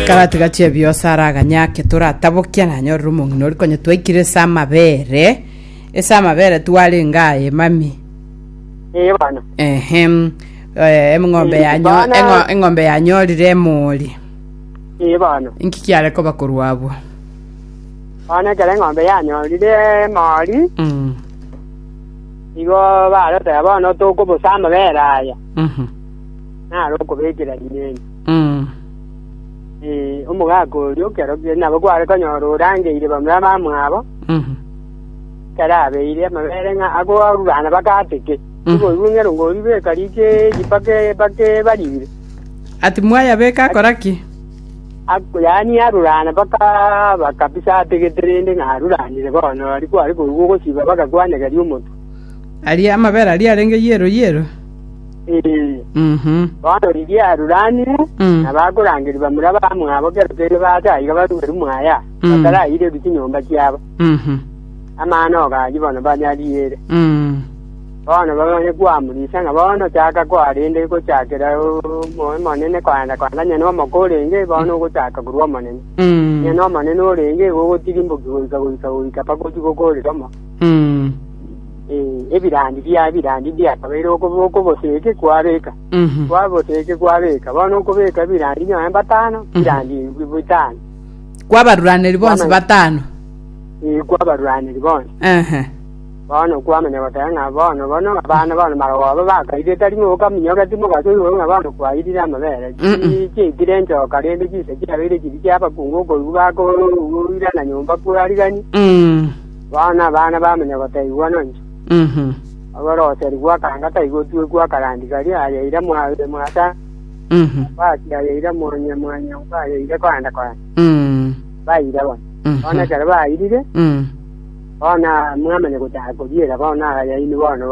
Karatigache ebiose ara aganyake toratabokia nanyorera omong'ina ori konya twaikire ase amabere ase amabere twarenge aye mami Ee bana. ehem eh, eng'ombe Eh, yanyo bana- eng'o- eng'ombe yanyorire emori Ee bana. inki kiare koba korwa abwo Bana ekero eng'ombe yanyorire mori, Mm, igo baroteba bono tokobose amabere aya. mhm. nare okobekera rineni. Mm. Ee, omogaka oria okero kie- nabo kware konyora orangeire bamura bamwabo, Mhm. ekero abeire amabere ng'a agoarurana bagateke. Mm. Igoigwe ng'ero ngoribeka rikeeri bake- bakebarire. Ati mwayabeka akora ki? Ak- yaani arurana bakaba kabisa ategete rende ng'a aruranire bono, ari kware koigwa ogosiba bagakwanegeria omotwe. Aria amabere aria arenge yero yero. Ee, Mhm. bono riria aruranire, Mm. nabakorangeri bamura bamwabo kera tende bataiga barueru mwaya, Mm. bataraireru chinyomba chiabo. Mhm. Amano ogachia bono banyariere. Mm. Bono bamanye kwamurisa ng'a bono chaka kwarende gochakera omoyo monene kwaenda kwaenda nyene omoko orenge bono ogochaka korwa omonene. Mm. Nyene omonene orenge igo ogotirimboki goika goika goika paka ochia gokorera omo. Mm. Ebirandi bia ebirandi mbiakabeire okoboseeke kwabeeka, kwaboseeke kwabeeka, bono okobeeka ebirandi nonye batano, ebirandi bitano. Kwabaruraneri bonsi batano. Ee, kwabaruraneri bonsi. Ehe. Bono kwamanya goteba ng'a bono bono abana bono marogo abo bakaire tari ng'a okaminyoka timogasa igoro ng'a bono kwairire amabere chiaikire enchoka rende chinsa chiabeire chiri chiabakungu okoigwa bakoirana nyomba kwarigani Bono abana bamanya gotaigwa nonye. Agwo Roserigwe akanga taigotwe gwa karandi karia ayaire mwasare, Basi ayaire monye mwanyomba ayaire koenda koenda. Baire bono. Bono ekero bairire, bono mwamanya gochaka koriera bono ayaini bono